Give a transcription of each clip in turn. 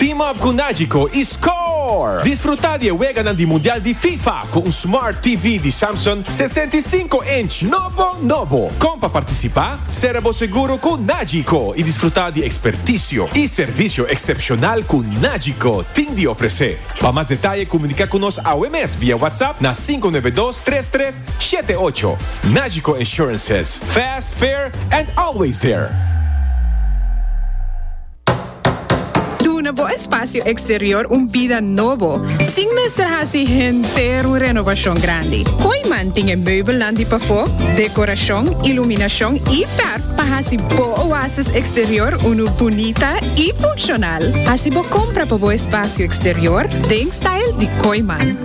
Team up cu Nagico y score! Disfruta di e weganan di Mundial di Fifa cu un Smart TV di Samsung sesenta i sinku inch nobo nobo. Con pa participa? Sera bo seguro cu Nagico y disfruta di experticio y servicio excepcional cu Nagico tin di ofrece. Pa mas detaye comunica cu nos awe mes via WhatsApp na sinku nuebe dos tres tres shete ocho. Nagico Insurances, fast, fair and always there! Duna bo espacio exterior un bida nobo, sin mester haci henter un renovacion grandi. Kooiman tin e meubelnan di pafó, decoracion, iluminacion y verf pa haci bo oasis exterior unu bunita y funccional. Haci bo compra pa bo espacio exterior den style di Kooiman.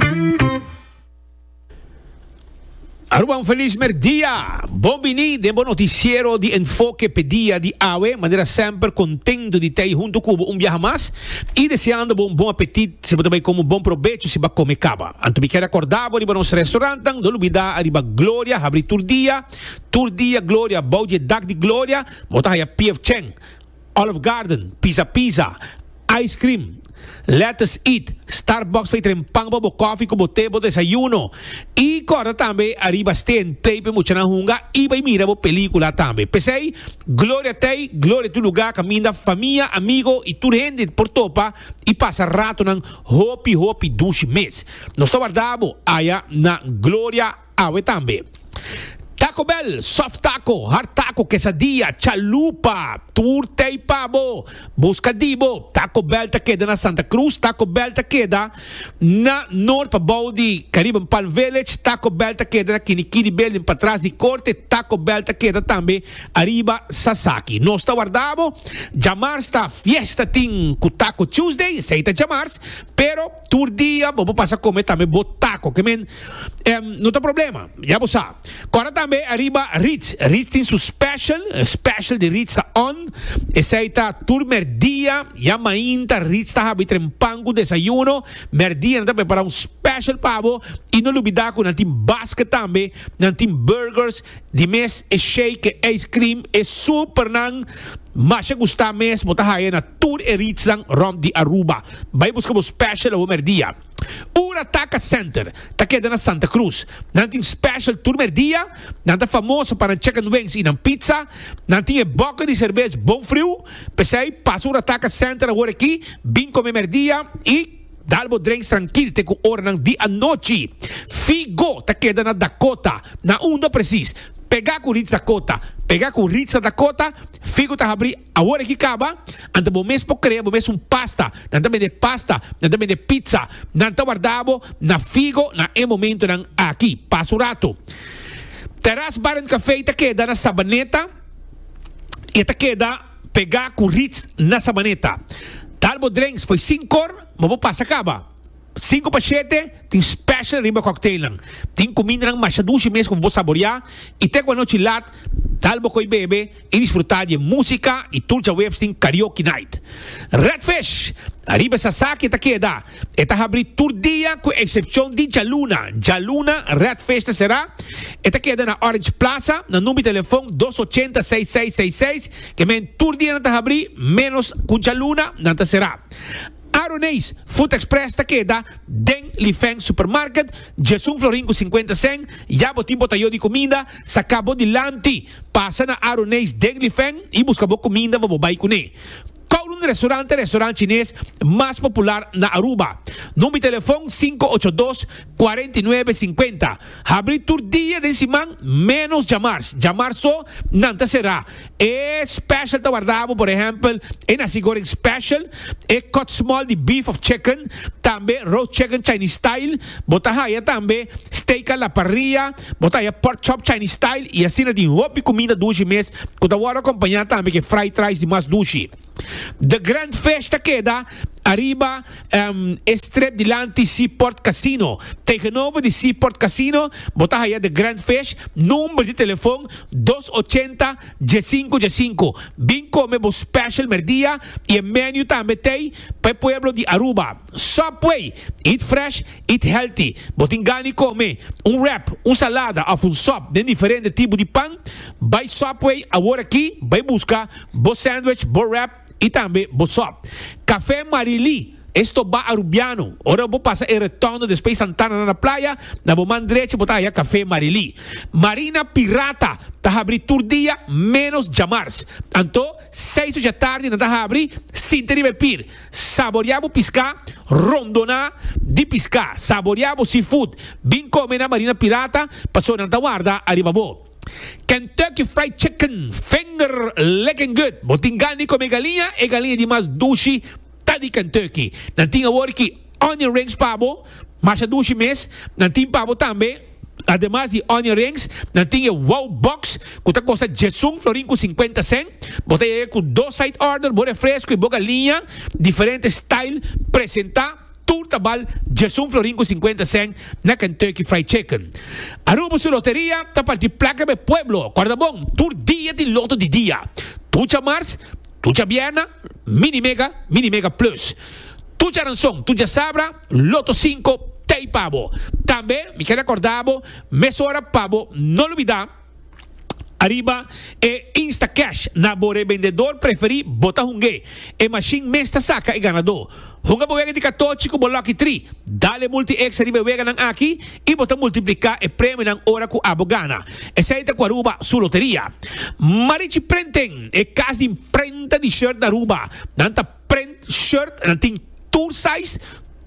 Aruba, un feliz merdia! Bon bini den bo noticiero di Enfoke p'e dia di awe. Manera semper, contento di t'ey hunto cu bo un biaha mas y deseando bo un bon apetit si bo ta bay come un bon probecho si bo come caba. Anto mi ker a corda bo riba nos restaurantnan, no lubida ariba Gloria habri tur dia, tur dia Gloria bou dje dak di Gloria, bo ta haya pf chen. Olive Garden, Pizza Pizza, Ice Cream, Lettuce Eat, Starbucks fey tren pan pa bo kofi ku bo te, bo desayuno. I korda tambe ariba steen play p'e muchanan hunga i bai mira bo pelikula tambe. P'esei, gloria tei, gloria tur lugá kaminda famia, amigo i tur hende por topa i pasa ratonan hopi hopi dushi mes. Nos ta warda bo aya na Gloria. Awe tambe. Taco Bell, soft taco, hard taco, quesadilla, chalupa, tur tei pa bo. Busca di bo. Taco Bell ta keda na Santa Cruz, Taco Bell ta keda na Noord pa bou di Caribbean Palm Village, Taco Bell ta keda na Kini Kini Building patras di Corte, Taco Bell ta keda tambe ariba Sasaki. Nos ta warda bo. Djamars ta fiesta tin cu Taco Tuesday, esey ta djamars, pero. Tur dia bo por pasa come tambe bo taco. Ke men em, no ta problema. Ya bo sa. Cora tambe arriba Ritz. Ritz tin su special. Special di Ritz ta on. Esei ta tur merdia. Ya mainta Ritz ta habi tren pan cu desayuno. Merdia nan ta prepara un special pa bo. Y no lubida cu nan tin basket tambe. Nan tin burgers. Di mes e shake e ice cream e supernan masha gusta mes bo ta haya na tur e reachnan rond di Aruba. Bay buska bo special awor merdia. Ura Taca Center ta keda na Santa Cruz. Nan tin special tur merdia, nan ta famoso pa nan chicken wings y nan pizza. Nan tin e boca di cervez bon friu. Pesey pasa Ura Taca Center awor aki, bin come merdia y. Dal bo drenks trankil te ku oranan di anochi. Figo ta keda na Dakota. Na unda presis? Pegá ku Ritz Dakota. Pegá ku Ritza Dakota? Figo ta habrí awor aki kaba? Ante bo mes por krea bo mes un pasta. Nan ta bende pasta. Nan ta bende pitsa. Nan ta warda bo na Figo na e momentunan aki. Pasa un ratu. Terras Bar and Café ta keda na Sabaneta i e ta keda. Pegá ku Ritz na Sabaneta. Tal bo drenks fo'i sin kor, ma bo pasa kaba. Sinku pa shete, tin special riba cocktailnan. Tin kumindanan masha dushi mes ku bo saboreá i te ku anochi lat, tal bo ko'i bebe i disfrutá di e músika i tur djaweps tin Karaoke Night. Redfish! Ariba e sasaki e ta keda. E ta habrí tur dia ku eksepshon di djaluna. Djaluna Red Fish ta será. E ta keda na Orange Plaza, na number telefon dos ochenta seis seis seis seis. Ke men tur dia nan ta habrí, ménos ku djaluna nan ta será. Aroneis Food Express ta keda den Lifeng Supermarket, Djesun Florin ku sinkuenta sèn. Ya bo tin botayó di kuminda, saka bo dilanti, pasa na Aroneis den Lifeng i buska bo kuminda pa bo bai kuné. Kowloon Restaurant e restaurant chines mas popular na Aruba. Number telefon sinku ocho dos, kuarenta i nuebe, sinkuenta. Habri tur dia den siman menos djamars. Djamars so nan ta será. E special ta warda bo por ehempel e nasi goreng special, e cut small di beef of chicken, tambe roast chicken Chinese style. Bo ta haya tambe steak a la parrilla. Bo ta haya pork chop Chinese style y asina tin hopi di cuminda dushi mes cu ta wordo acompaña tambe cu e fried rice di mas dushi. The grand fish ta keda ariba um e strip dilanti Seaport Casino. Tegenover di Seaport Casino bo ta haya The Grand Fish, number di telefon dos ochenta djasinku djasinku. Bin come bo special merdia y e menu tambe t'ey pa e pueblo di Aruba. Subway, Eat Fresh, Eat Healthy. Bo tin gan di kome un wrap, un salada of un sub den diferente tipo di pan? Bai Subway aworaKi bai buska bo sandwich, bo wrap y tambe bo sub. Cafe Marilí, E stobá Arubiano. Ora bo pasa e Retondo despey Santana na na playa, na bo man drechi bo ta haya Cafe Marilí. Marina Pirata ta habri tur dia menos djamars. Anto seis ocha tardi nan ta habri sinta riba e pir. Saborea bo piská rondoná di piská. Saborea bo seafood. Bin kome na Marina Pirata, paso nan ta warda ariba bo. Kentucky Fried Chicken finger licking good. Bo tin gan di kome galiña, e galiña di mas dushi ta di Kentucky. Nan tin awor aki onion rings pa bo, masha dushi mes. Nan tin pa bo tambe. Ademas di onion rings, nan tin e wow box cu ta costa djesun florin cu cincuenta cent. Bo ta yega cu dos side order, bo refresco y bo galiña, diferente style, presenta, tur ta bal djesun florin cu cincuenta cent na Kentucky Fried Chicken. Aruba su loteria ta parti placa pa e pueblo, corda bon, tur dia tin loto di dia, tucha mars, tucha bierna, mini mega, mini mega plus. Tucha aranson, tucha sabra, Loto Cinco ta ei pa bo. Tambe mi ke recorda bo mesora pa bo no lubida ariba e Instacash na bo rebendedor preferi bo ta hunge. E machine mes ta saca e ganador. Hunga bo wega di catochi cu bo lucky three. Dale multi extra riba e weganan aki y bo ta multiplica e premionan ora cu abo gana. Esey ta cu Aruba su loteria. Marichi Prenten, e cas di imprenta di shirt na Aruba. Nan ta. Print shirt nan tin tur size,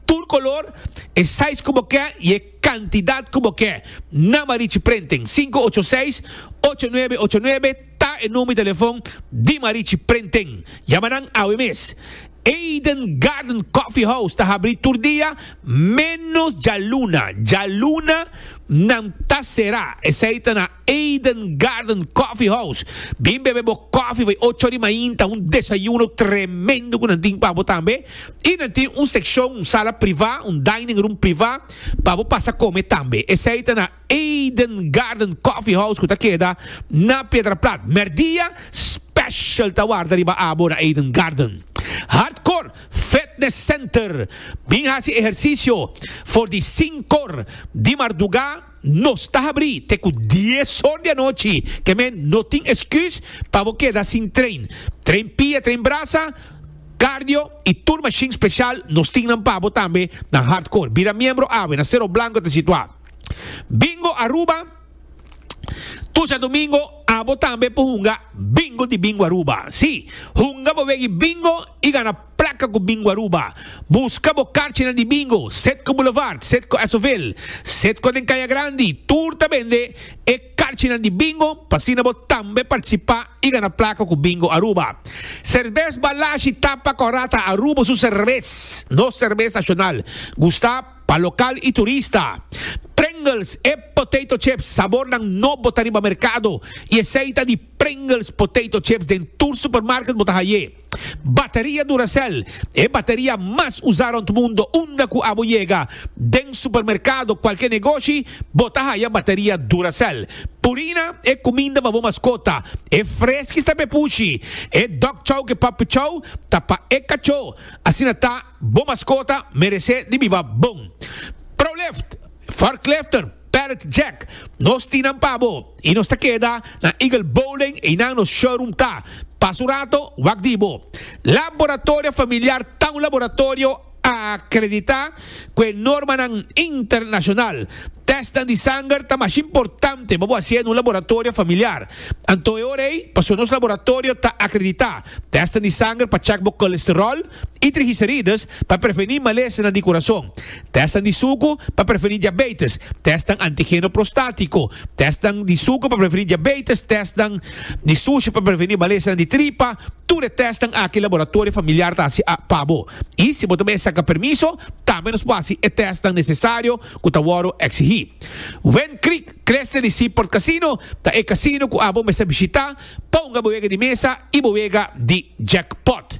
tur color, e size cu bo ke y e cantidad cu bo ke. Nama Richie Printing, sinku ocho seis, ocho nuebe ocho nuebe ta e number di telefon di ma Richie Printing. Yama nan awe mes. Eden Garden Coffee House ta habri tur dia, menos djaluna. Djaluna. Nan ta será. Esei ta na Eden Garden Coffee House. Bin bebe bo koffie by ocho di mainta, un desayuno tremendo ku nan tin pa bo tambe. I nan tin un sekshon, un sala privá, un dining room privá, pa bo pasa kome tambe. Esei ta na Eden Garden Coffee House ku ta keda na Piedraplat. Mèrdia special ta warda riba abo na Eden Garden. Hardcore. Fitness Center bin hasi ehersisio for di sinkor di marduga, nos ta habri te ku dies or di anochi, ke men no tin esküs pa bo keda sin train. Train pia, train brasa, cardio i tur mashin spesial nos tin nan pa bo tambe, nan hardcore. Bira miembro awe na Sero Blanco ta situá. Bingo Aruba. Tusha domingo abo tambe por hunga Bingo di Bingo Aruba. Sí, hunga bo wegi Bingo i gana plaka ku Bingo Aruba. Buska bo karchinan di Bingo, set ku Boulevard, set ku Esoville, set ku den Kaya Grandi, tur ta bende e karchinan di Bingo pa asina bo tambe partisipá i gana plaka ku Bingo Aruba. Serbes Balashi ta pa Corata Aruba su serbes, nos serbes nashonal. Gusta? Pa lokal i turista, Pringles e potato chips sabornan nobo ta riba merkado i esei ta di Pringles potato chips den tur supermarket bo ta haye. Bateria Duracell, e bateria mas usa rond mundo unda ku abo yega den supermerkado kualke negoshi bo ta haya bateria Duracell. Purina e kuminda pa bo maskota, e freskis ta pepushi, e dog chow ke puppy chow ta pa e kachó, asina ta. Bo maskota meresé di biba bon. Prolift, Forklifter, Pallet Jack, nos tin nan pa bo y nos ta keda na Eagle Bowling y nan nos showroom ta, pas un rato, wak di bo. Laboratorio Familiar ta un laboratorio acredita cu e normanan internacional. Testnan di sanger ta mas importante pa bo hacié n'un laboratorio familiar. Anto e ora ey, pasobra nos laboratorio ta acredita, testnan di sanger pa check bo colesterol, i trigicerides pa prevení malesanan di kurason, tèstnan di suku pa prevení diabeites, tèstnan antigeno prostátiko, tèstnan di suku pa prevení diabeites, tèstnan di sushi pa prevení malesanan di tripa, tur e tèstnan aki laboratorio familiar ta hasi pa bo. I si bo ta mester saka permiso, tambe nos por hasi e tèstnan nesesario ku ta wòrdu eksigí. Wendkriek Crescent Seaport Casino ta e kasino ku abo mester bishitá Pa hunga bo wega di mesa y bo wega di jackpot.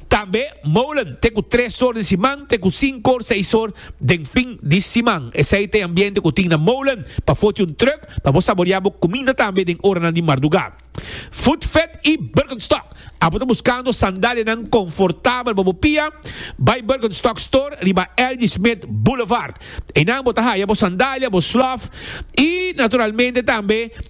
Tambe Molen te cu tres or di siman te cu cinco or seis or den fin di siman. Esey ta e ambiente cu tin na Molen pa foti un truck pa bo saborea bo cuminda tambe den oranan di marduga. Food Vet y Birkenstock. Abo ta buscando sandalianan confortabel pa bo pia? Bay Birkenstock Store riba Elgie Smith Boulevard. Eynan bo ta haya bo sandalia, bo slof y naturalmente tambe.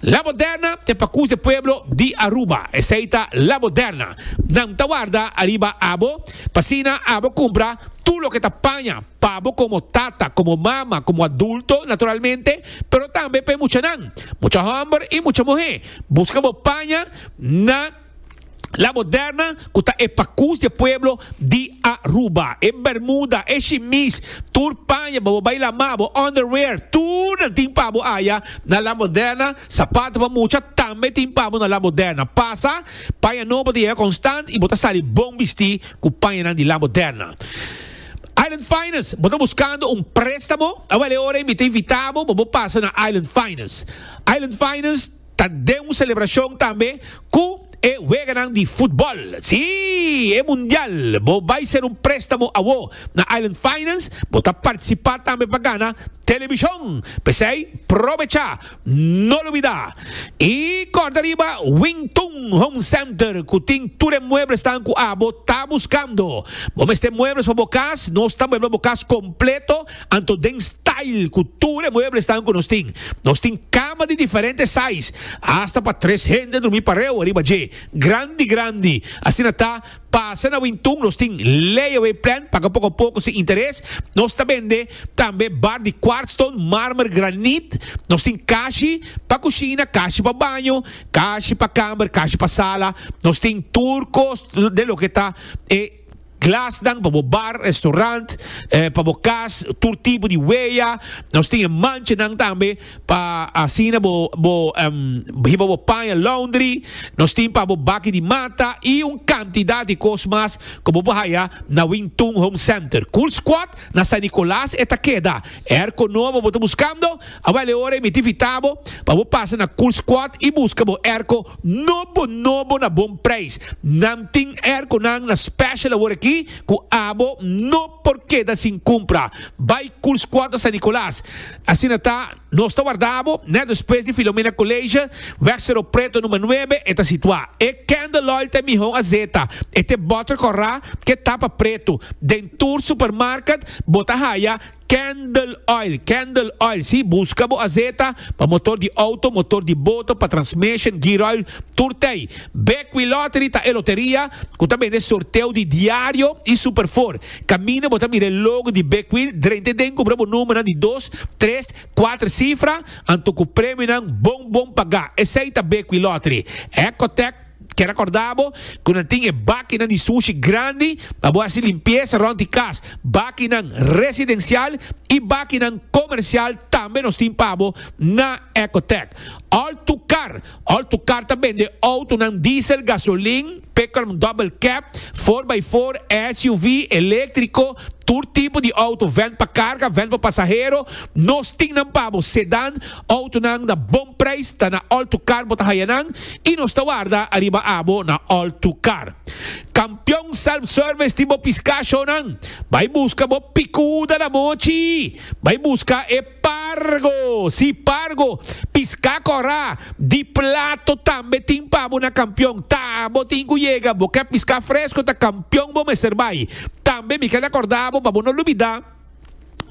La Moderna te pakus e pueblo di Aruba, esei ta La Moderna. Nan ta warda ariba abo, p'asina abo kumpra tur loke ta paña pa bo komo tata, komo mama, komo adulto, naturalmente, pero tambe pa e muchanan. Mucha hòmber i mucha muhé, buska bo paña na. La Moderna cu ta e pacus di e pueblo di Aruba. E bermuda, e shimis, tur paña pa bo bay lama, bo underwear, tur nan tin pabo aya na La Moderna. Sapato pa mucha tambe tin pabo na La Moderna. Pasa, paña nobo ta yega constant y bo ta sali bon bisti cu pañanan di La Moderna. Island Finest, bo ta buscando un prestamo? Awel e ora mi ta invitabo pa bo pasa na Island Finest. Island Finest. Ta den un selebrashon tambe ku e weganan di futbòl. Sí! E mundial! Bo bai ser un préstamo awó na Island Finance, bo ta partisipá tambe pa gana telebishon. P'esei, probechá! No lubidá! I kòrda riba Wingtun Home Center ku tin tur e mueblesnan ku abo ta buskando. Bo mester muebles pa bo kas? Nos ta muebla bo kas kompleto. Anto den style cu tur e mueblesnan cu nos tin. Nos tin cama di diferente size, hasta pa tres hende drumi pareu ariba dje, grandi grandi. Asina ta, pasa na Wintun nos tin layaway plan, paga poco poco sin interes. Nos ta bende tambe bar di kwartstone, marmer, graniet. Nos tin kashi pa cushina, kashi pa baño, kashi pa kamer, kashi pa sala. Nos tin tur cos den loke ta e. Glasnan pa bo bar, restaurant, pa bo cas, tur tipo di huella. Nos tin e manchanan tambe pa asina bo bo hiba bo paña laundry. Nos tin pa bo baki di mata y un cantidad di cos mas cu bo por haya na Wing Tun Home Center. Cool Squad Na San Nicolas e ta keda. Airco nobo bo ta buscando? A bali ora e miti fitabo pa bo pasa na Cool Squad y busca bo airco nobo nobo na bon prijs. Nan tin airconan na special awor aki cu abo no por keda sin cumpra. Bay Cool Squad na San Nicolas. Asina ta. Nos ta warda bo net despues di Filomena College, Weg Cerro Preto number nuebe, e ta situá. E Candlelight ta e mihó gazeta, e ta e bòter kòrá ku e tapa pretu. Den tur supermarket bo ta haya Candleoil, Candle Oil, sí, buska bo azeta pa motor di outo, motor di boto, pa transmeshen, gearoil, tur ta ei. Bekwilottery ta e loteria ku ta bende sorteo di diario i superfor. Caminda bo ta mira e logo di Big Wheel drente den cubra bo numbernan di dos, tres, cuater cifra, anto cu premionan bon bon paga. Esey ta Big Wheel Lottery. Ecotec ke recorda bo cu nan tin e bakinan di sushi grandi pa bo haci limpieza rond di cas. Bakinan residencial y bakinan comercial tambe nos tin pa bo na Ecotec. All tu car! Alto Car ta bende autonan diesel, gasolin, pickup double cab, four by four, SUV, eléktriko, tur tipo di auto, vèn pa karga, vèn pa pasahero. Nos tin nan pa bo, sedan, autonan na bon preis ta na Alto Car bo ta haya nan i nos ta warda ariba abo na Alto Car. Kampion Self Service tin bo piskáshonnan. Bai buska bo pikuda na mochi! Bai buska e. Pargo, si pargo, pisca cora, di plato tambe tin pa bo na campion, ta bo tin cu yega bo ke pisca fresco ta campion bo mester bay, tambe mi kel acorda bo pa bo no lubida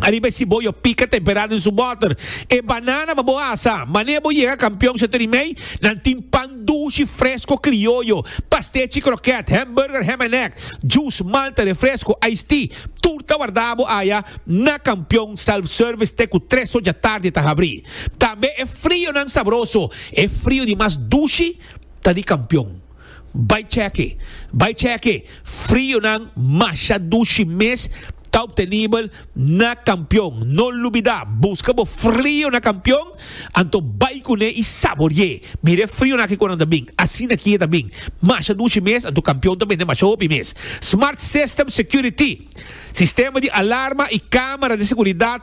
ariba e ciboyo pica tempera den su boter, e banana pa bo asa, mane bo yega campion Chateau di Mei nan tin pan dushi fresco crioyo, pastechi croquet, hamburger ham en egg, juice, malta, refresco, ice tea tur ta warda bo aya. Na Kampion, self-service te ku tres oja tardi ta habrí. Tambe e frionan sabroso, e frio di mas dushi ta di Kampion. Bai chèk'e, bai chèk'e, frionan masha dushi mes ta obtenibel na Kampion. No lubidá, buska bo frio na Kampion, anto bai kuné i sabori'é. Mira e frionan aki kon nan ta bin, asina aki e ta bin, masha dushi mes, anto Kampion ta bende masha hopi mes. Smart System Security. Sistema di alarma y camera di seguridad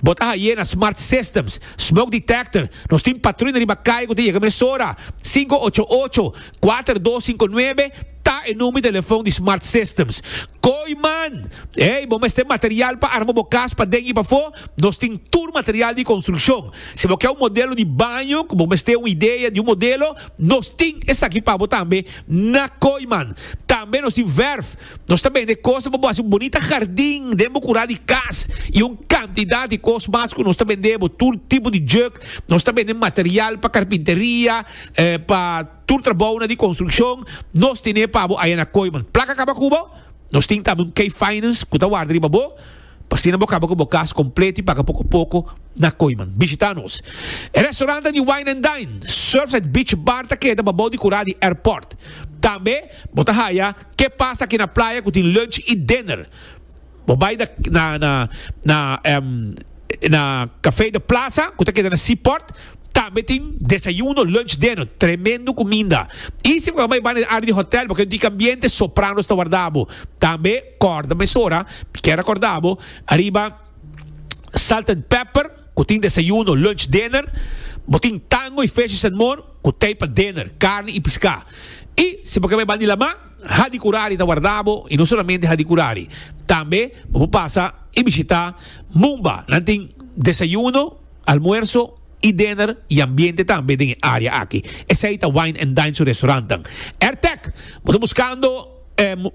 bo ta haye na smart systems. Smoke detector, nos tin patruina riba caye cu ta yega mesora. Sinku ocho ocho, kuater dos sinku nuebe ta e number di telefon di smart systems. Kooiman, Ey, bo mester material pa arma bo cas paden y pafo? Nos tin tur material di construccion. Si bo ke un modelo di baño cu bo mester un idea di un modelo, nos tin esaki pa bo tambe na Kooiman. Tambe nos tin verf. Nos ta bende kosnan pa bo hasi un bonita hardin den bo kura di kas i un kantidat di kos mas ku nos ta bende bo. Tur tipo di juk, nos ta bende material pa karpinteria, pa tur trabounan di konstrukshon, nos ten'é pa bo aya na Koiman. Plaka kaba ku bo? Nos tin tambe un K-Finance ku ta warda riba bo. Pa asina bo kaba ku bo kas kompleto i paga poko poko na Koiman. Bishitá nos. E restaurante di Wine and Dine, Surfside Beach Bar ta keda babou di kurá di airport. Tambe bo ta haya Ke Pasa Aki na Playa ku tin lunch i dinner. Bo bai na na na Café de Plaza ku ta keda na Seaport, tambe tin desayuno, lunch, dinner. Tremendo kuminda. I si bo kaba bai banda di área di hòtèl bo ken rica ambiente, Sopranos ta warda bo. Tambe. Kòrda mesora, mi kier rekòrda bo, ariba Salt and Pepper ku tin desayuno, lunch, dinner, bo tin Tango i Fishes and More ku tei pa dinner, karni i piská. I si bo ke bai bandi lamá, Hadi Kurari ta warda bo i no solamente Hadi Kurari, tambe bo por pasa i bishitá Mumba, nan tin desayuno, almuerso i dinner i ambiente tambe den e área aki. Esei ta Wine and Dine su restorantan. Artek, bo ta buskando.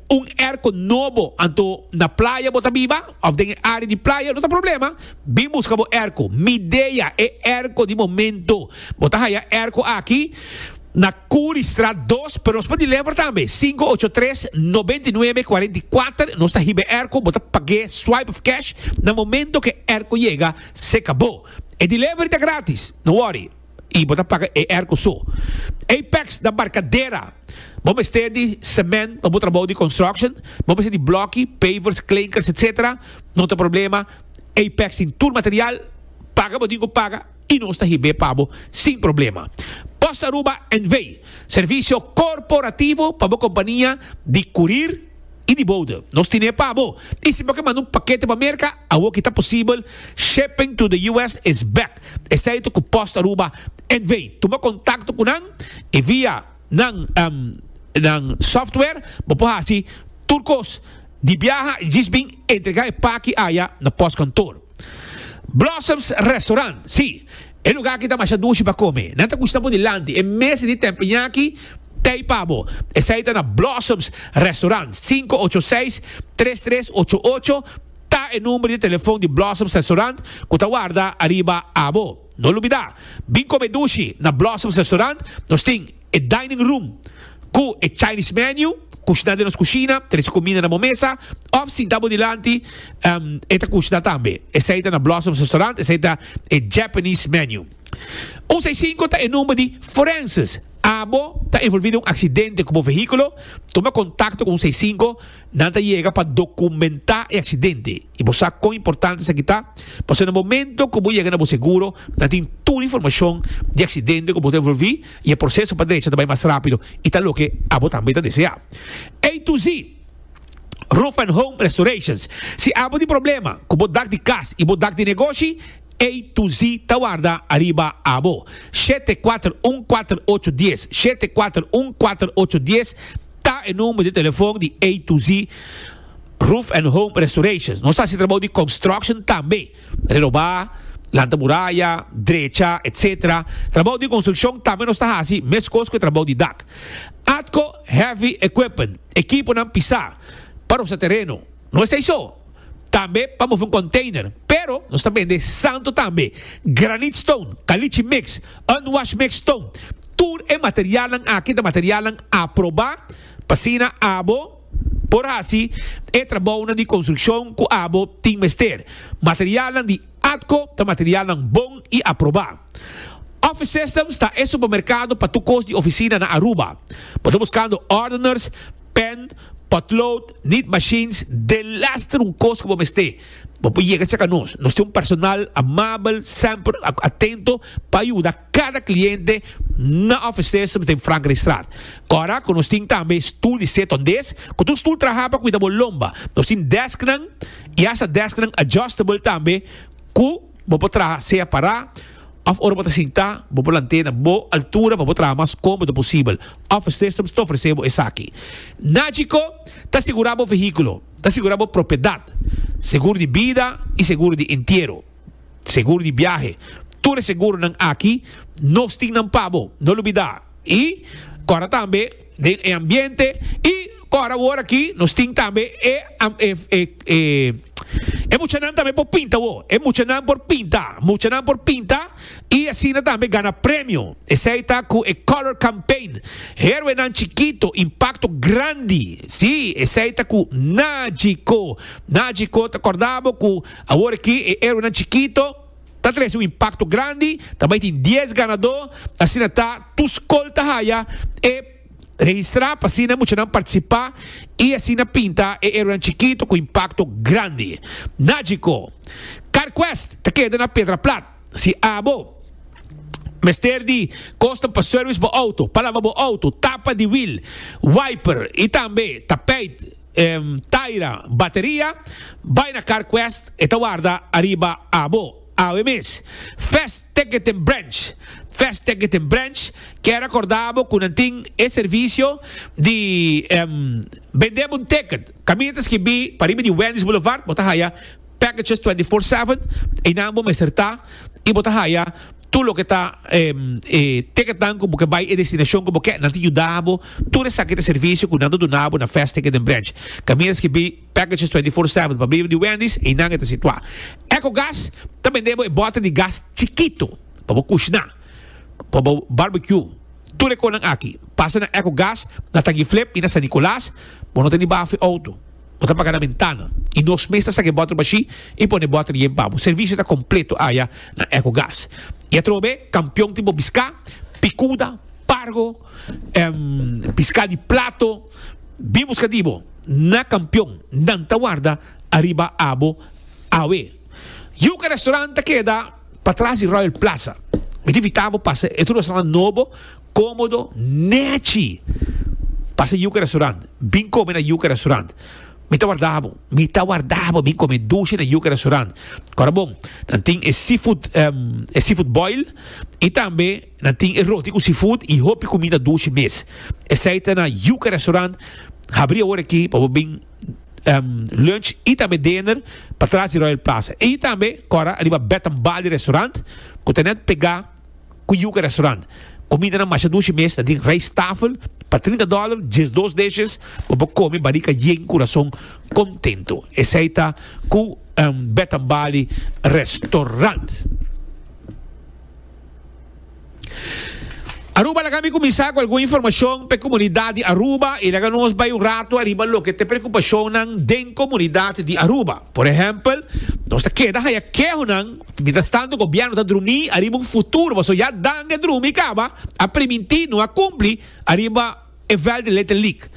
un erko nobo anto na playa bo ta biba of den e area di playa no ta problema bin buska bo erko midea e erko di momento bo ta haya erko aki na Curi straat dos pero nos por deliver tambe sinku ocho tres nobenta i nuebe kuarenta i kuater nos ta hiba e erko bo ta pag'e swipe of cash na momento ku e erko yega se kabo e delivery ta gratis no worry. y bo ta paga e erco so. Apex na Barcadera bo mester di cement pa bo trabao di construction, bo mester di bloki, pavers, klinkers etc. No ta problema, Apex tin tur material, paga bo tin cu paga y nos ta hib'é pa bo sin problema. Post Aruba NV. Servicio corporativo pa bo compania di curir y di boude. Nos tin'é pa bo. Y si bo ke manda un pakete pa Merca, awo ki ta posibel, shipping to the US is back. esei ta ku Post Aruba NV. Tuma kontakto ku nan i via nan nan software bo por hasi tur kos di biaha i djis bin entregá e paki aya na postkantoor. Blossoms Restaurant, sí, e lugá aki ta masha dushi pa kome. Nan ta kushna bo dilanti e mes di tempeña aki tei pa bo. Esei ta na Blossoms Restaurant, sinku ocho seis, tres tres ocho ocho. Ta e number di telefon di Blossoms Restaurant cu ta warda ariba abo. No lubida, bin come dushi na Blossoms Restaurant, nos tin e dining room cu e Chinese menu, cushna den nos cushina, trece cuminda na bo mesa, of sinta bo dilanti e ta cushna tambe. Esey ta na Blossoms Restaurant, esey ta e Japanese menu. Un seis cinco ta e number di Forenses. Abo ta involvi den un accidente cu bo vehiculo? Tuma contacto cu un seis cinco Nan ta yega pa dokumentá e aksidente i bo sa kon importante esaki ta, pasobra na momento ku bo yega na bo seguro nan tin tur e informashon di e aksidente ku bo ta envolví i e proseso pa drecha ta bai mas rápido i ta loke abo tambe ta deseá. A to Z Roof and Home Restorations Si abo tin problema ku bo dak di kas i bo dak di negoshi, Ey tu zi ta warda ariba abo. Shete kuater un kuater ocho dies, shete kuater un kuater ocho dies ta e number di telefon di Ey tu zi Roof and Home Restorations. Nos ta haci trabao di construction tambe, renoba, lanta muraya, drecha, etc. Trabao di construccion tambe nos ta haci, mescos cu e trabao di dak. Atco Heavy Equipment, ekiponan pisa pa rosa tereno. No esei so, tambe pa mofi un container, pero nos ta bende santo tambe, granite stone, caliche mix, unwashed mixed stone, tur e materialnan aki ta materialnan aproba, p'asina abo por haci e trabounan di construccion cu abo tin mester. Materialnan di Atco ta materialnan bon y aproba. Office Systems ta e supermercado pa tur cos di oficina na Aruba. Bo ta buscando ordeners, Pen, potlood, niet machines, de lester un kos ku bo mester. Bo por yega serka nos. Nos tin un personal amabel, semper atento pa yuda kada kliente na ofrecer servis den Frankrijkstraat. Kòrda ku nos tin tambe stul di set hondes, ku tur stul traha pa kuida bo lomba. Nos tin desknan i asta desknan adjustable tambe ku. Bo por traha sea pará òf ora bo ta sintá, bo por lant'é na bo altura pa bo traha mas kómodo posibel. Office Systems ta ofresé bo esaki. Nagico ta sigurá bo vehíkulo, ta sigurá bo propiedat, seguro di bida i seguro di entiero, seguro di biahe. Tur e seguronan aki nos tin nan pa bo, no lo bidá. I kòrda tambe. den e ambiente y con awor aki nos tin tambe e muchanan tambe por pinta awor, e muchanan por pinta, muchanan por pinta y asina tambe gana premio, esey ta cu e color campaign, heroenan chikito impacto grandi, si esey ta cu Najico, Najico ta corda bo cu awor aki e heroenan chikito. Ta trece un impacto grandi, ta bay tin diez ganador, asina ta tur scol ta haya e registra pa asina muchanan participa y asina pinta e heroenan chikito cu impacto grandi. Nagico. Car Quest ta keda na Pedra Plat. Si abo mester di custom pa service bo auto, palaba bo auto, tapa di wiel, wiper y tambe tapijt, Taira bateria bai na Carquest e ta warda ariba abo awe mes First Ticketing Branch First Ticketing Branch kier a corda bo cu nan tin e servicio di bende bo un ticket caminda ta skibi pa riba di Wendy's Boulevard bo ta haya Packages twenty four seven, einan bo mester ta y bo ta haya tur loke ta e ticketnan cu bo ke bay e destinacion cu bo ke. Nan ta yuda bo tur esaki ta servicio cu nan ta duna bo na Fast Ticket den Branch. Cami a skibi Packages twenty four seven pa bribo di Wendy's, einan e ta situa. Ecogas ta bende bo e bote di gas chikito pa bo cushna, pa bo barbecue. Tur e conan aki, pasa na Ecogas, na Tangi Flip y na San Nicolas, bo no ta ni baha fu e auto. Bo ta paga na bentana y nos mes ta saca e boter bashi y pone e boter yen pa bo. Servicio ta completo aya na Ecogas. Y atrobe campeon tin bo pisca, picuda, pargo, pisca di plato, bin busca di bo na campeon. Nan ta warda ariba abo awe. Yuca Restaurant ta keda patras di Royal Plaza. Mi ta invita bo pasa e otro restaurant nobo. Komodo nèchi pa sa Yuka Restaurant. Bin kome na Yuka Restaurant. Mi ta warda bo. Mi ta warda bo bin kome dushi na Yuka Restaurant. Kòrda bon, nan tin e seafood, e seafood boil i tambe nan tin e roti ku seafood i hopi kumida dushi mes. Esei ta na Yuka Restaurant habri awor aki pa bo bin lunch i tambe dinner patras di Royal Plaza. I tambe kòrda ariba Bed and Bali Restaurant ku ta nèt pegá. Ku yuka restaurant. Kumidanan masha dushi mes ta den rijsttafel pa trinta dòler, diesdos dishes, bo por kome barika yen kurason kontento. Esei ta ku Betambalie Restaurant. Aruba laga mi kuminsá ku algun informashon pa e komunidat di Aruba i laga nos bai un ratu ariba loke ta e preokupashonnan den komunidat di Aruba. Por ehèmpel, nos ta keda haya kehonan. Mientras tanto gobierno ta drumi ariba un futuro paso ya danga e drumi caba a priminti no a cumpli ariba e vel di ley ta leak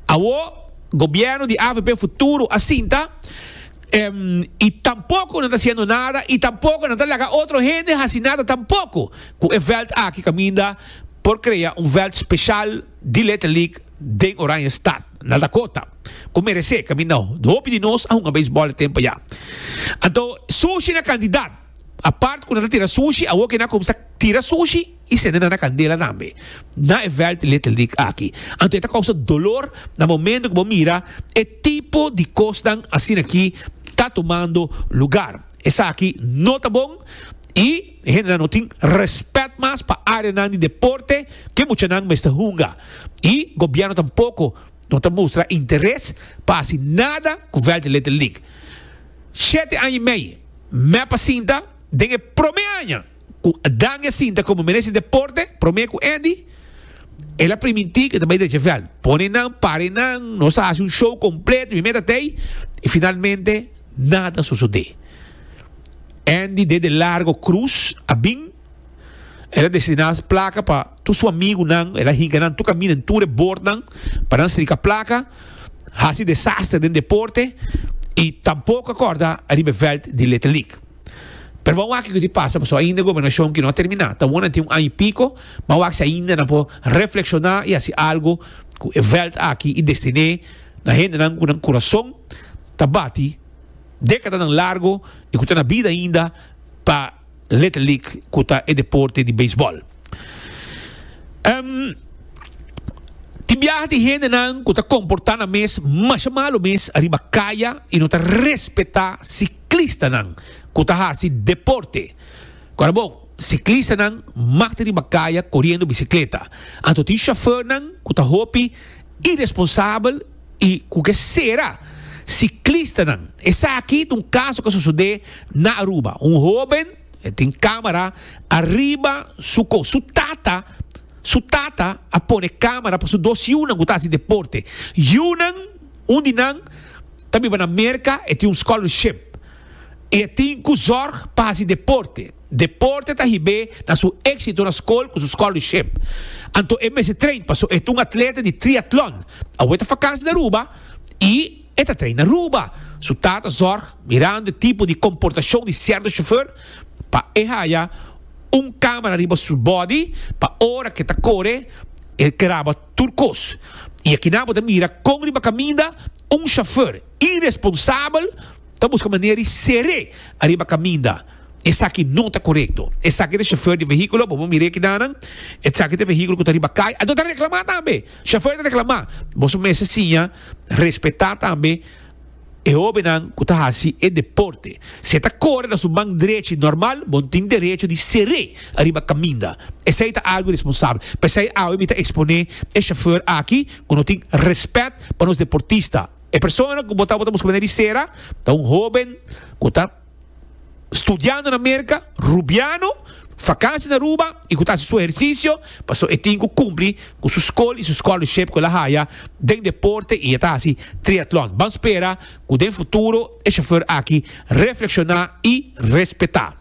awo gobierno di avp futuro a sinta em y tampoco nan ta haciendo nada y tampoco nan ta laga otro hende haci nada tampoco cu e veld aki caminda por crea un veld special di ley ta leak den Oranje stad. Na Dakota, ku meresé ka minau, hopi di nos a hunga beisbòl e tempu ya. Anto, sushi na kandidat. Apart ku nan ta tira sushi, awor ke nan a kuminsá tira sushi i sende nan na kandela tambe. Na e vèlt Little League aki. Anto e ta kousa dolor na momentu ku bo mira e tipo di kosnan asin'akí ta tumando lugar. Esaki no ta bon i. E hendenan no tin respet mas pa areanan di deporte ku e muchanan mester hunga i gobièrnu tampoko no ta mustra interes pa hasi nada ku vèlt di Little League. Shete aña i mei mep a sinta den e promé aña ku Dangui a sinta komo minister di deporte promé ku Andy el a primintí ku e ta bai drecha vèlt pone nan pare nan nos a hasi un show kompleto mi mep ta tei i finalmente nada sosodé. Andy dede largo cruz a bin. El a destiná su plaka pa tur su amigunan. El a hinka nan tur kaminda den tur e bordnan pa nan strika plaka. Hasi desaster den deporte i tampoko a kòrda ariba e vèlt di Letelik. Pero bo a wak kiko tin pasa pasobra ainda e gobernashon kino a terminá. Ta bon nan tin un aña i piko, bo a wak si ainda nan por reflekshoná i hasi algu ku e vèlt aki i destiné na hendenan ku nan kurason ta bati. Dékadanan largu i ku ta na bida ainda pa Little League ku ta e deporte di beisbòl. Tin biaha di hendenan ku ta komportá nan mes masha malu mes ariba kaya i no ta respetá siklistanan ku ta hasi deporte. Ku a bon, siklistanan makti riba kaya koriendo bisikleta. Anto tin shofèrnan ku ta hopi iresponsabel. I ku ke sera siklistanan? Esaki ta un kaso ku a sosodé na Aruba. Un hóben e tin kámara ariba su kos. Su tata su tata a pone kámara pa su dos yunan ku ta hasi deporte. Yunan, un di nan ta biba na Merka, e tin un scholarship i e tin ku zòrg pa hasi deporte. Deporte ta hib'é na su éksito na skol ku su scholarship. Anto e mester train paso e ta un atleta di triatlon. Awe ta fakansi na Aruba i e ta train na Aruba. Su tata zòrg mirando e tipo di komportashon di sierto shofèr pa e haya un kámara riba su bòdi pa ora ku e ta kore e graba tur kos. I akinan bo ta mira kon riba kaminda un shofèr iresponsabel ta buska manera di ser'é ariba kaminda. Esaki no ta korekto. Esaki ta shofèr di vehíkulo. Bo bo mir'é kidanan. Esaki ta vehíkulo ku ta riba kai. Anto ta reklamá tambe. Shofèr ta reklamá. Boso mester siña respetá tambe e hóbennan ku ta hasi e deporte. Si e ta kore na su ban drechi nòrmal, bo no tin derecho di ser'é ariba kaminda. Esei ta algu iresponsabel. P'esei awe mi ta eksponé e shofèr aki ku no tin rèspèt pa nos deportista. E persona ku bo ta bo ta buska manera di sera ta un hóben ku ta. studiando na Merca, rubiano, vakansi na Aruba y cu ta haci su ehercicio pasobra e tin cu cumpli cu su scol y su scholarship cu el a haya den deporte y e ta haci triathlon. Ban spera cu den futuro e chauffeur aki reflexiona y respeta.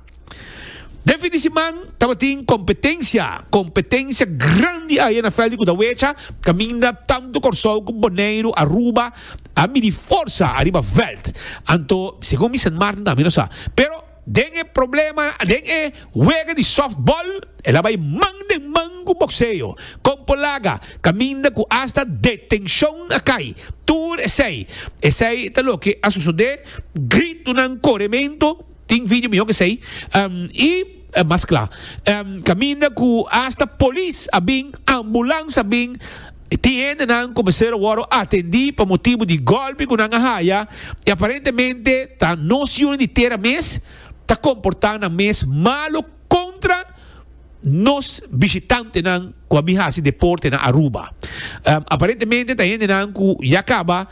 Den fin di siman tabatin competencia, competencia grandi ayer na Veldi cu ta wecha caminda tanto Corsou cu Boneiru, Aruba, A midi forsa ariba veld. Anto, segun Vincent Maarten ta, mi no sa. Pero den e problema, den e wega di softball, el a bai man den man ku bokseo. Kompo laga, kaminda ku asta detenshon a kai. Tur esei. Esei ta loke a sosodé, gritonan, kore mento. Tin video mihó k'esei i mas kla. Kaminda ku asta polis a bin, ambulans a bin, tin hendenan ku mester a wòru atendí pa motibu di gòlpi ku nan a haya i aparentemente ta nos yunan di tera mes ta komportá nan mes malu kontra nos bishitantenan ku a bin hasi deporte na Aruba. Aparentemente ta hendenan ku ya kaba.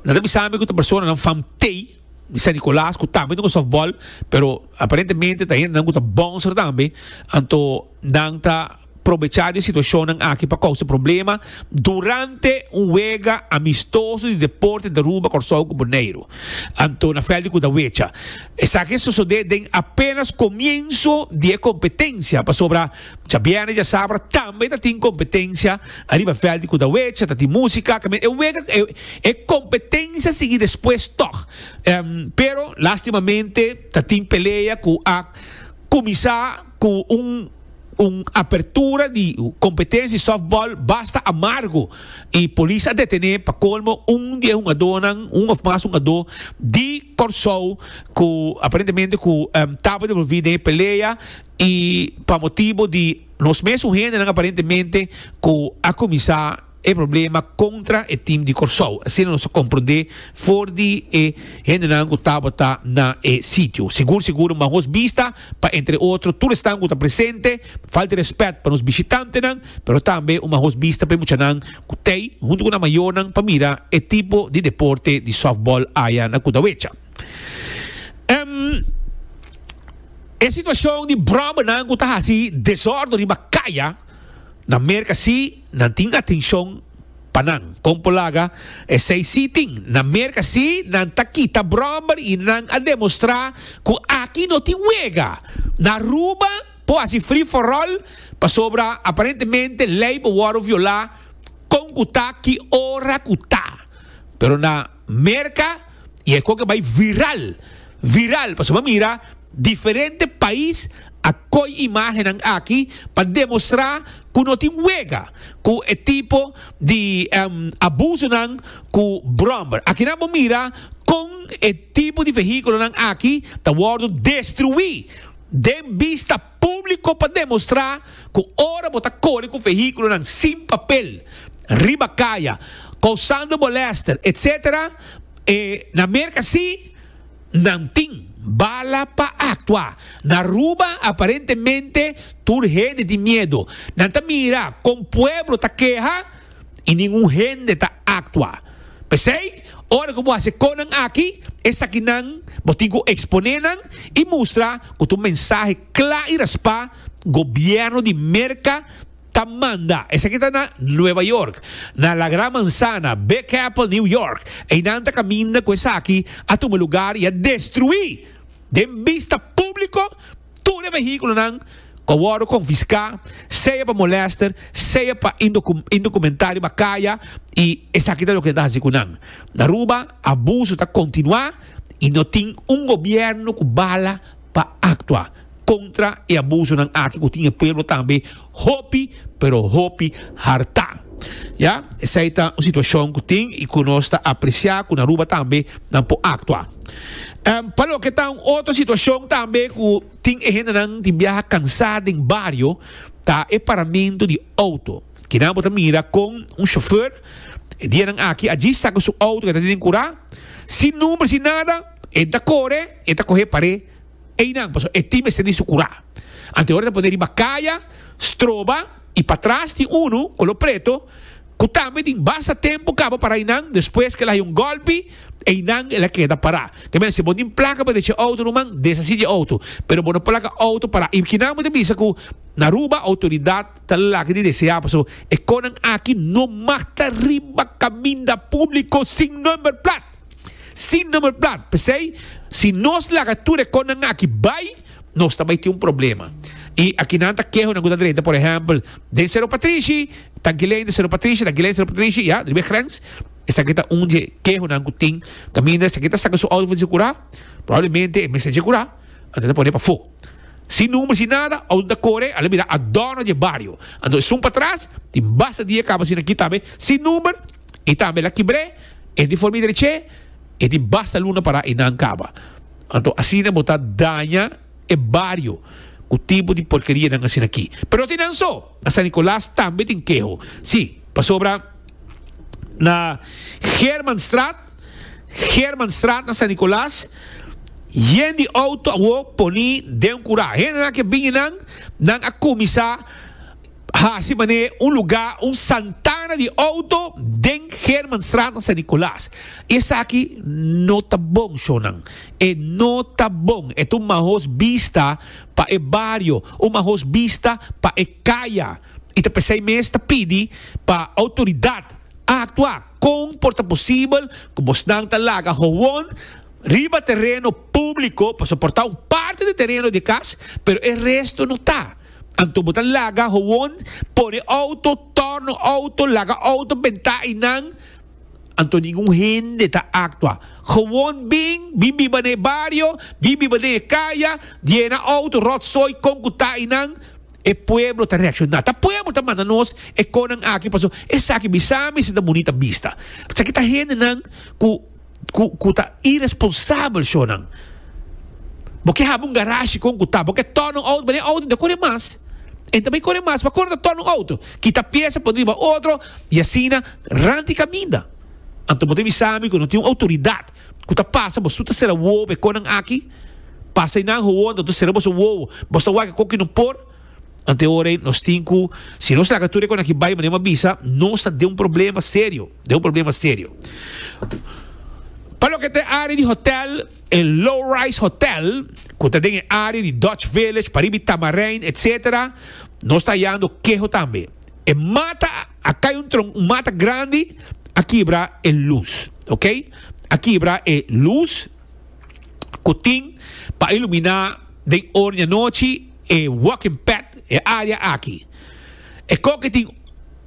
Nan ta bisa mi cu ta personanan fam tey di San Nicolas cu tambe ta con softball, pero aparentemente ta hendenan cu ta bouncer tambe. Anto nan ta probecha di e situacionnan aki pa causa problema durante un wega amistoso di deporte entre Aruba, Corsou cu Boneiru. Anto na veld di Cudawecha. Esaki a sosode den apenas comienzo di e competencia pasobra. Djabièrnè djasabra tambe ta tin kompetensia ariba vèlt di Kudawecha, ta tin músika, ta e wega e kompetensia sigui despues tòg. Pero lástimamente ta tin pelea ku a kuminsá ku un un apertura di kompetensia di sòftbòl basta amargu i polis a detené pa kolmo un di e hungadónan, un òf mas hungadó di Kòrsou ku aparentemente ku tabata involví den e pelea. I pa motibu di nos mes un hendenan aparentemente ku a kuminsá e problema kontra e tim di Kòrsou. Asina nos a komprondé for di e hendenan ku tabata na e sitio. Sigur sigur un mahos bista pa entre otro tur esnan ku ta presente. Falta di rèspèt pa nos bishitantenan, pero tambe un mahos bista pa e muchanan ku t'ei huntu ku nan mayornan pa mira e tipo di deporte di sòftbòl aya na Kudawecha. Em, e situacion di brombernan cu ta haci desordo riba caya na Merca si nan tin atencion pa nan. Con por laga esey si tin. Na Merca si nan ta kita bromber y nan a demostra cu aki no tin wega. Na Aruba por haci free for all pasobra aparentemente ley por wordo viola con cu ta ki ora cu ta. Pero na. Merca y e coge bay viral, viral, pasobra bo a mira diferente pais a coy imagennan aki pa demostra cu no tin wega cu e tipo di abusonan cu brommer. Akinan bo mira con e tipo di vehiculonan aki ta wordo destrui den bista. Públiko pa demostrá ku ora bo ta kore ku vehíkulonan sin papel riba kaya, kousando molèster etc. Na Merka sí nan tin bala pa aktua. Na Aruba aparentemente tur hende tin miedu. Nan ta mira kon pueblo ta keha. i nin un hende ta aktua. P'esei, ora ku bo hasi konan aki, esakinan bo tin ku eksponé nan i mustra ku ta un mensahe kla i raspá Gobièrnu di Merka ta manda. Esaki ta na Nueva York, na La Gran Manzana, Big Apple, New York. Einan ta kaminda ku esaki a tuma lugar i a destruí den bista públiko. Tur e vehíkulonan ku a wòrdu konfiská, sea pa molèster, sea pa indokumentá riba kaya i esaki ta loke e ta hasi ku nan. Na Aruba, abuso ta kontinuá i no tin un gobièrnu ku bala pa aktua kontra e abusonan aki ku tin e pueblo tambe hopi pero hopi harta. Ya, esei ta un situashon ku tin i ku nos ta apresiá ku na Aruba tambe nan por aktua. Pa loke ta un otro situashon tambe ku tin e hendenan tin biaha kansá den bario ta e paramentu di outo. Kinan bo ta mira kon un shofèr e dianan aki aji saka su outo ku e ta tene den kurá, sin number, sin nada, e ta kore, e ta kohe par'é. Einan, pasobra e tin mester di su kurá. Anteora ta poné riba kaya, stroba i patras tin unu, kolo preto, ku tambe tin basta tempu kaba pará einan. Despues ke el a haya un gòlpi, einan el a keda pará. Ta mester si bo tin plaka pa desha e outo ruman, deshasí di e outo, pero bo no por laga outo pará. I kinan bo ta bisa ku na Aruba outoridat ta lak di deseá pasobra e kosnan aki no mag ta riba kaminda públiko sin nòmber plat. Sin number plat. P'esei, si nos laga tur e konnan aki bai, nos ta bai tin un problema. I aki nan ta keho nan ku ta drenta, por ehèmpel, den Sero Patrishi, Tankilein den Sero Patrishi, Tankilein den Sero Patrishi, ya, riba e grens. Esaki ta un dje kehonan ku tin. Kaminda esaki ta saka su outo for di su kurá, probablemente e mester dje kurá, anto e ta pon'é pafó. Sin number, sin nada, outo ta kore, a lo bira a dòno dje bario. Anto esun patras, tin basta dia kaba asina aki tambe, sin number. I tambe la kibr'é, e di formi drech'é, e di basta luna pará i nan kaba. Anto asina bo ta daña e bario ku tipo di porkerianan asin'akí. Pero tin nan so, na San Nicolas tambe tin keho. Sí, pasobra na Germanstraat, Germanstraat na San Nicolas, yen di outo awó poní den kurá. Hendenan ke bini nan, nan a kuminsá. Hasi manera e un lugá un santana di outo den Germanstraat na San Nicolaas. I esaki no ta bon, shownan. E no ta bon. E ta un mahoz bista pa e bario, un mahoz bista pa e kaya. I ta p'esei mes ta pidi pa outoridat a aktua. Kon por ta posibel ku bosnan ta laga howon riba tereno públiko, pasobra por ta un parti di tereno di e kas, pero e resto no ta? Anto bo ta laga howon por e outo, torno outo, laga outo bentá i nan. Anto ningun hende ta aktua. Howon bin, bin biba na e bario, bin biba den e kaya, diena outo, ròtsoi, kon ku ta i nan. E pueblo ta reakshoná. Ta pueblo ta manda nos e konan aki pasobra esaki bisa mi si ta bunita bista. Esaki ta hendenan ku. cu cu ta irresponsabel shonan. Bo ke haba un garashi con cu ta bo ke torna un auto bene auto ta core mas en ta bay core mas pa cor ta torna un auto kita pieza pon riba otro y asina ranta y caminda anto bo ta bisa mi cu no tin un autoridad cu ta pasa bo su ta cera wowo pa e conan aki pasa y nan howo anto ta cera boso wowo boso wak e coki no por. Ante ora ei nos tin ku si nos laga tur e konakí bai manera mi a bisa, nos ta den un problema serio, den un problema serio. Pa loke ta e área di hotèl, e Low Rise Hotèl, ku ta den e área di Dutch Village, pa riba di Tamarijn, etsetera, nos ta hayando keho tambe. E mata a kai un tronko, un mata grandi a kibra e lus, ok? A kibra e lus ku tin pa iluminá den ora di anochi. E walking path, e área aki, e koke tin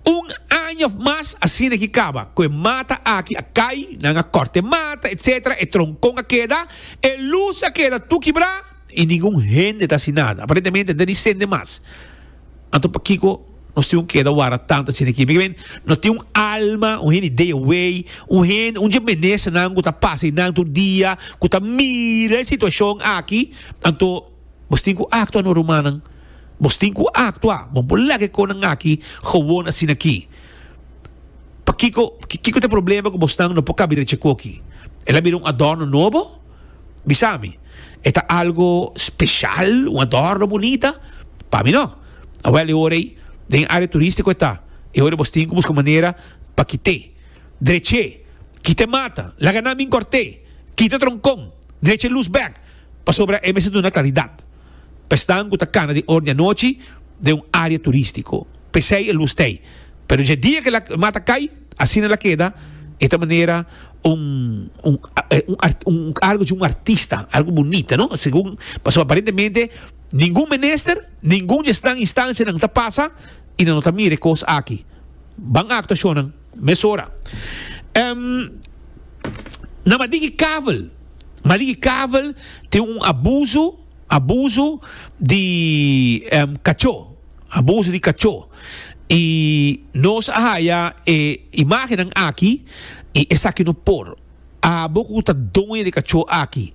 un aña òf mas asina ki kaba ku e mata aki a kai, nan a kòrta e mata etc. E tronkon a keda, e lus a keda tur kibrá i ningun hende ta hasi nada. Aparentemente no ta ni sende mas. Anto pakiko nos tin ku keda wara tantu asina aki? Mi ke bini no tin un alma, un hende ideawei, un hende, un dje menesternan ku ta pasa einan tur dia, ku ta mira e situashon aki? Anto. Bos tin ku aktua no rumannan. Bos tin ku aktua. Bon por laga e konan aki gewoon asin'aki. Pakiko kiko ta e problema ku bosnan no por kaba direchi e koki? El a bira un adorno nobo? Bisami. E ta algo speshal? Un adorno bunita? Pa mi no. Awèl e ora ei den e área turístiko e ta. E ora ei bos tin ku buska manera pa kit'é. Drech'é. Kita e mata. Laga nan bin kòrt'é. Kita tronkon. Drecha e lus bèk. Pasobra e mester duna klaridat pa e snan ku ta kana di orni anochi den un área turístiko. P'esei e lus t'ei. Pero dje dia ku e mata kai, asina el a keda, e ta manera un un algu dje un artista, algu bunita, no? Segun, pasobra aparentemente ningun minister, ningun dje snan, instancianan ta pasa i nan no ta mira e kos aki. Ban actuacionnan. Mesora. Em, na Madigi Kavel, Madigi Kavel tin un abuso, abuso di em kacho, abuso di kacho. I nos a haya e imagennan aki i esaki no por. Abo ku ta doño di e kacho aki.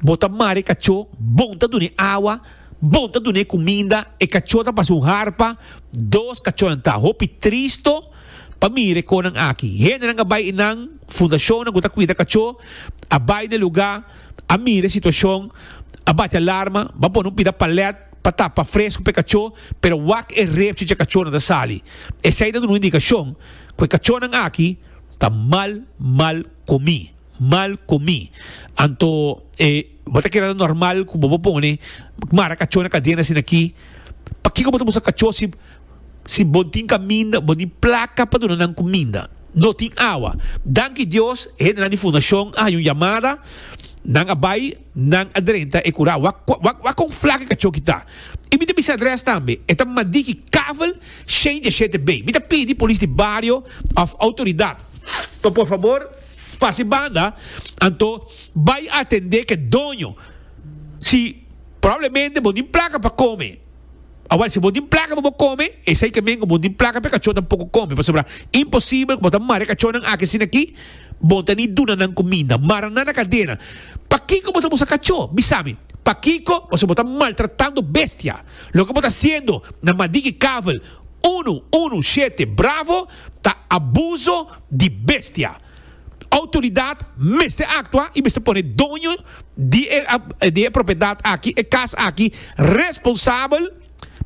Bo ta mara e kachó, bon ta dun'é awa, bon ta dun'é kuminda, e kachó ta pasa un harpa, dos kachónan ta hopi tristo pa mira e konan aki. Hendenan a bai enan, fundashonnan ku ta kuida kachó a bai n'e lugá, a mira e situashon, a bati alarma, b'a pone un pida palèt pa tapa fresku p'e kachó, pero wak e repchi dje kachónan ta sali. Esei ta duna un indikashon ku e kachónan aki ta mal mal komi. mal comí anto e bo ta keda normal cu bo bo pone mara cachó na cadena asina aki pakico bo ta buska cachó si si bo tin caminda bo tin placa pa duna nan cuminda no tin awa danki Dios e hendenan di fundacion a haña un yamada nan a bay nan a drenta e cura wak wak wak con flaco e cachó ki ta y mi ta bisa adres tambe e ta madiki kavel shane deshete bay mi ta pidi polis di bario of autoridad pa por fabor. Pa si banda, anto bai atendé k'e doño. Si probablemente bo tin plaka pa kome. Awor, si bo tin plaka pa bo kome, esei ke men ku bo tin plaka p'e kachó tampoko kome, pasobra imposibel ku bo ta mara e kachónan aki asina aki, bo ta ni duna nan kuminda. Mara nan na kadena. Pakiko bo ta usa kachó? Bisa mi. Pakiko? Pasobra bo ta maltratando bestia. Loke bo ta hasiendo na madiki kavel unu, unu, shete, bravo. ta abuso di bestia. Outoridat mester aktua i mester pone doño di e propiedat aki, e kas aki, responsabel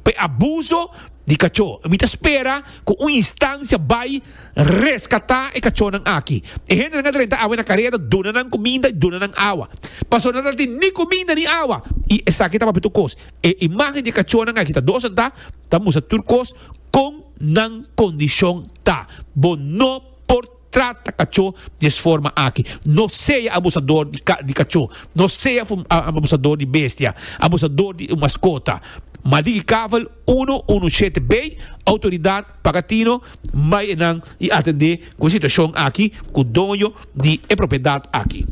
pa e abuso di kachó. Mi ta spera ku un instansia bai reskatá e kachónan aki. E hendenan a drenta awa i na kareda duna nan kuminda i duna nan awa. Pasobra nan no ta tin ni kuminda ni awa i esaki ta papia tur kos. E imágen di e kachónan aki ta dos, ta mustra tur kos. Con nan condicion ta? Bo no por trata cacho di es forma aki. No sea abusador di cacho. No sea abusador di bestia. Abusador di un mascota. Maldigi Kavel uno uno shete bay autoridad Pagatino bay enan y atende cu e situacion aki cu doño di e propiedad aki.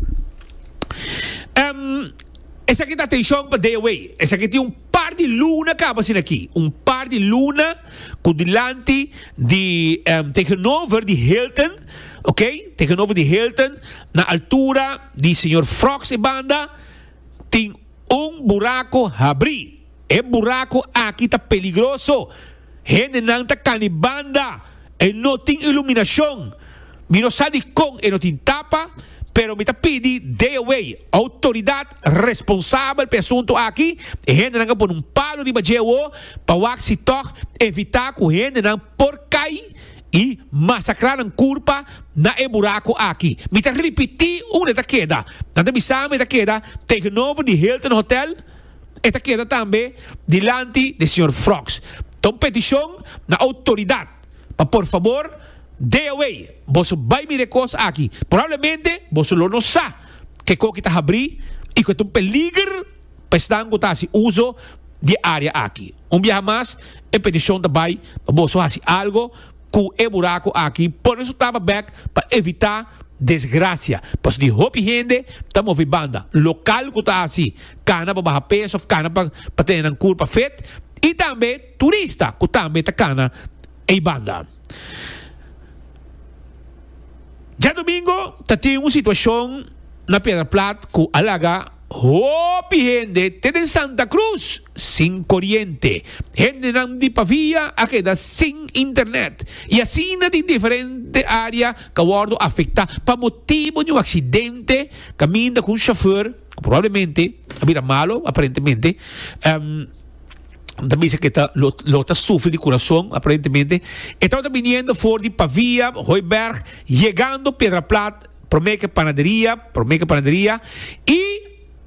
Esaki ta atencion pa Deaway. Esaki tin un. Par di luna kaba asina aki, un par di luna ku dilanti di tegenover di Hilton, ok, tegenover di Hilton, na altura di señor Frogs e banda, tin un buraku habri. E buraku aki ta peligroso. Hendenan ta cani banda, e no tin iluminacion. Mi no sa di con e no tin tapa, pero mi ta pidi Djewey, autoridad responsabel p'e asunto aki, e hendenan a pone un palo riba djewo pa wak si tog evita cu hendenan por cay y masacra nan curpa na e buraco aki. Mi ta ripiti unda e ta keda. Nan ta bisa mi e ta keda tegenover di Hilton Hotel. e ta keda tambe dilanti di señor Frogs. Ta un peticion na autoridad pa por fabor dei awey boso bay mira e cos aki. Probablemente boso lo no sa keco ki ta habri y cu ta un peliger pa esnan cu ta haci uzo di e area aki. Un biaha mas e peticion ta bay pa boso haci algo cu e buraco aki pone su taba bek pa evita desgracia pasobra hopi hende ta movi banda local cu ta haci cana pa baha peso of cana pa tene nan curpa fit y tambe turista cu tambe ta cana ey banda. Diadomingo ta tin un situacion na Piedraplat cu a laga. Hopi hende te den Santa Cruz sin coriente. Hendenan di Pavia a keda sin internet y asina tin diferente area ca wordo afecta pa motibo di un accidente caminda cu un chauffeur cu probablemente a bira malo aparentemente nan ta bisa que lo ta sufri di curason aparentemente. E tawata biniendo for di Pavia, Hooiberg, yegando Piedra Plat. Prome ke panaderia, prome ke panaderia, i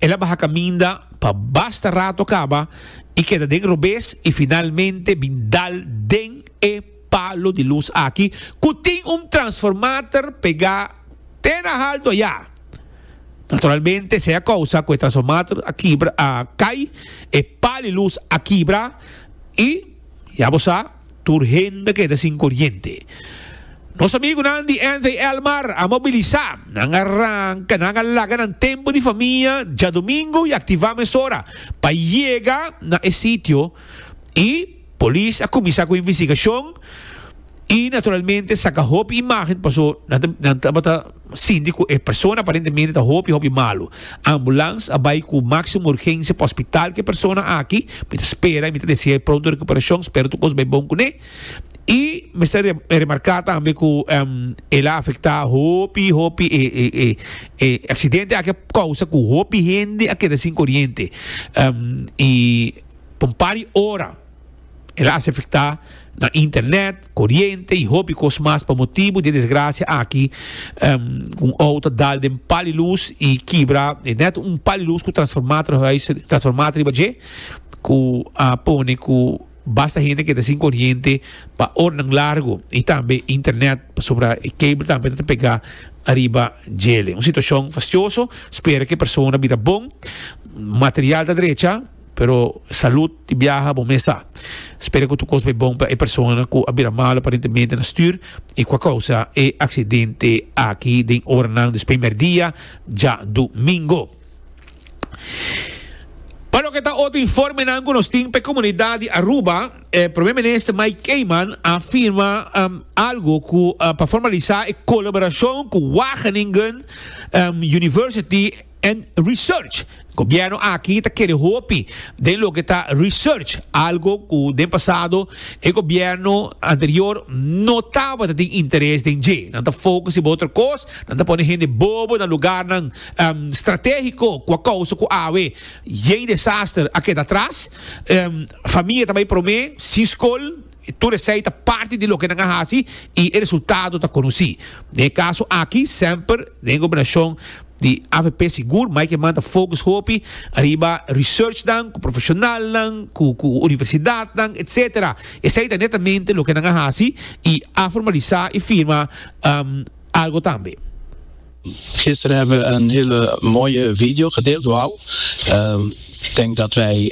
el a baha kaminda pa basta rato kaba i keda den robes i finalmente bin dal den e palo di lus aki ku tin un transformater pegá te na haltu ayá. Naturalmente sea kousa ku e transformater a kibra a kai, e pal di lus a kibra i ya bo sa. Tur hende keda sin koriente. Nos amigunan di Anthey Elmar a mobilisá. Nan a ranka, nan a laga nan tempu di famia djadumingu i aktivá mesora pa yega na e sitio i polis a kuminsá ku investigashon i naturalmente saka hopi imágen paso nan tabata Síndico, E persona aparentemente ta hopi hopi malu. Ambulance a bai cu máximo urgencia pa hospital cu e persona aki. Mi ta spera y mi ta desea pronto recuperacion. Spero tur cos bai bon cu ne. Y mester remarca tambe cu el a afecta hopi hopi e accidente aki a causa cu hopi hende a keda sin coriente y pa un par di ora. El a hasi afectá nan internet, coriente y hopi cos mas pa motibu di e desgracia aki cu un auto a dal den pal di luz y kibra e net un pal di luz cu transformá ta huis transformá ta riba dje cu a pone cu basta hende keda sin coriente pa oranan largo y tambe internet pasobra e cable tambe ta pegá ariba djele un situacion fastioso spera cu e persona bira bon material ta drecha. Pero salud di biaha bo mes sa. Spera ku tur kos bai bon pa e persona ku a bira malu aparentemente na stuur i ku a kousa e aksidente aki den oranan di sprimer dia djadumingo. Pa loke ta otro informenan ku nos tin pa e komunidat di Aruba, e Prome Minister Mike Keiman a firma algu ku pa formalisá e kolaborashon ku Wageningen University, and research. Gobierno aki ta kere hopi den loke ta research, algo ku den pasado e gobierno anterior no tabata tin interes den dje. Nan ta focus riba otro kos, nan ta pone hende bobo na lugarnan strategiko ku a kousa ku awe yei desaster a keda atras, famia ta bai prome, sin skol. Tur esei ta parti di loke nan a hasi i e resultado ta konosí. Den e kaso aki, semper den e gobernashon di avp sigur mai ke man ta fokus hopi ariba researchnan ku profeshonalnan ku ku universidatnan etc. Esei ta netamente loke nan a hasi i a formalisá i firma algo tambe. Gister hebben we een hele mooie video gedeeld. Wauw. Ik denk dat wij.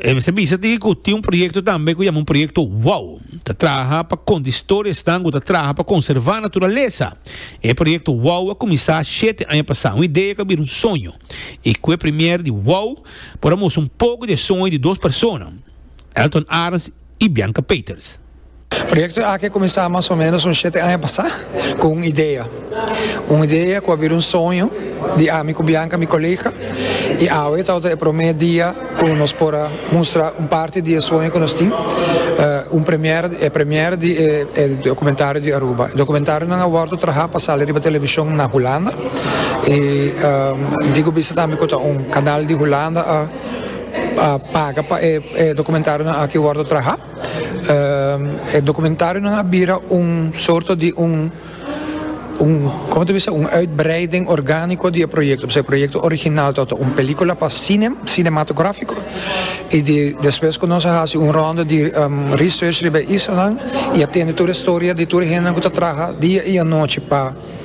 E mester bisa tin ku tin un proyekto tambe ku yama un proyekto wow. Ta traha pa konta historia esnan ku ta traha pa konservá naturalesa. E proyekto wow a kuminsá shete aña pasá. Un idea ku a bira un soño. I ku e premier di wow por a mustra un poko di e soño di dos persona, Elton Arns i Bianca Peeters. Proyekto aki a kuminsá mas o ménos un shete aña pasá ku un idea. Un idea ku a bira un soño di ami ku Bianca, mi kolega, i awe e tabata e promé dia ku nos por a mustra un parti di e soño ku nos tin, un premier, e premier di e dokumentario di Aruba. E dokumentarionan a wòrdu trahá pa sali riba televishon na Hulanda i digu bisti tambe ku ta un kanal di Hulanda a paga pa e dokumentarionan aki wòrdu trahá. E dokumentarionan a bira un sorto di un, koma ta bisa, un uitbreiding orgániko di e proyekto. Pasobra e proyekto original ta ota un pelíkula pa sine, sinematográfiko, i di despues ku nos a hasi un rònda di research riba e isla nan i a tende tur e storia di tur e hende ku ta traha dia i anochi pa.